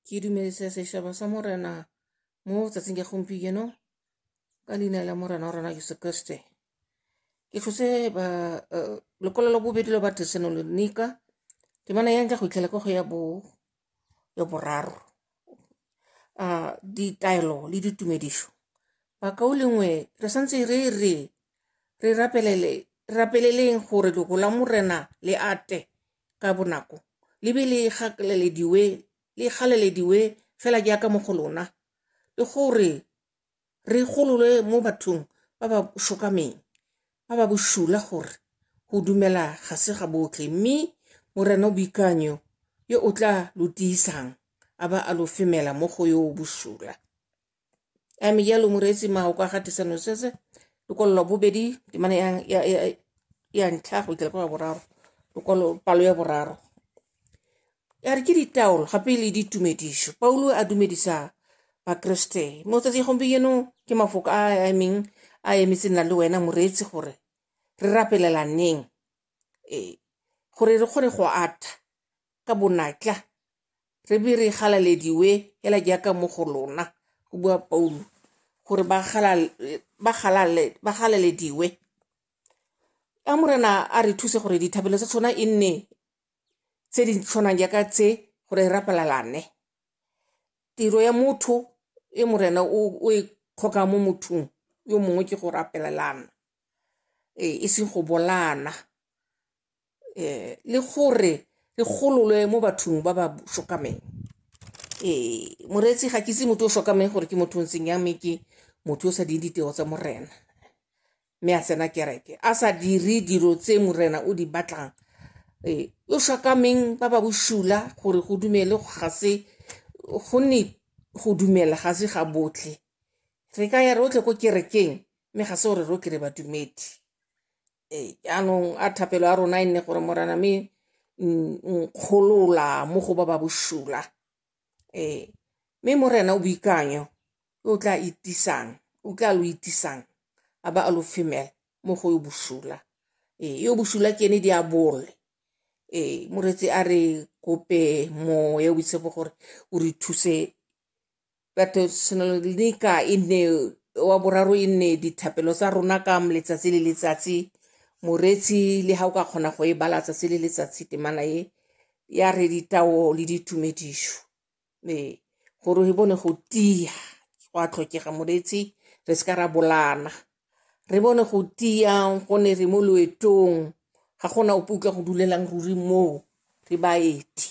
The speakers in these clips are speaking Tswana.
ke dumedisa sešaba sa morena mo tsatsing ya gompieno ka leina la morena wa rona jesu kriste ke tlhose ba eh, lekwalo la bobedi la batesanonika ke mana ya nka go itlhela ka go ya bo ya boraro a ah, ditaelo le ditumedišo bakao lengwe re santse re re re rapelele rapeleleng gore lego la morena le ate ka bonako le be le gakalelediwe le galelediwe fela jaaka mo go lona le gore re gololwe mo bathong ba ba shokameng ba ba bosula gore go dumela ga se ga botlhe mme morena o boikanyo yo o tla lo tiisang a ba a lo femela mo go yo o bosula a mme jalo moreetsi mmago kwa gatisa nosese lokwalo lwa bobedi temana ya ntlha go ikela kwa boraro lokwalo palo ya boraro ya re ke ditaolo gape le ditumedišo paulo a dumedisa bakriste mo tsatsi gompieno ke mafoko a a emeng a emetse nna le wena moreetsi gore re rapelelaneng ee gore re kgone go atha ka bonatla re be re galalediwe hela jaaka mo go lona go bua paulo gore ba galalediwe a morena a re thuse gore dithabelo tsa tshwana e nne tse di tshwanang jaaka tse gore re rapalalane tiro ya motho e morena o e kgoka mo mothong yo mongwe ke go rapelelana e seng go bolana um le gore re gololwe mo bathong ba ba shokameng ee moreetsi ga ke se motho o shokameng gore ke motho o ntseng ya mme ke motho o sa ding ditiro tsa morena mme a tsena kereke a sa dire dilo tse morena o di batlang ee o shokameng ba ba boshula gore go dumele ga se gonne go dumela ga se ga botlhe re ka ya rotlhe ko kerekeng mme ga se gore rotlhe re badumedi ee jaanong a thapelo ya rona e nne gore morana me nkgolola mo go ba ba bosula ee mme morena o boikanyo o tla itisang o tla lo itisang a ba a lo femela mo go yo bosula ee yo bosula ke ene di a bole ee moretsi a re kope moya o boitshepo gore o re thuse Batho tshwanelo le dika e nne wa boraro e nne dithapelo tsa rona ka letsatsi le letsatsi moreetsi le ga o ka kgona go e bala tsatsi le letsatsi temana e ya re ditao le ditumedišo ee gore e bone go tia go a tlhokega moreetsi re se ka ra bolana re bone go tiyang go ne re mo loetong ga gona ope utlwa go dulelang ruri moo re baeti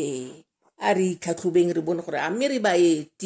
ee a re itlhatlhobeng re bone gore a mme re baeti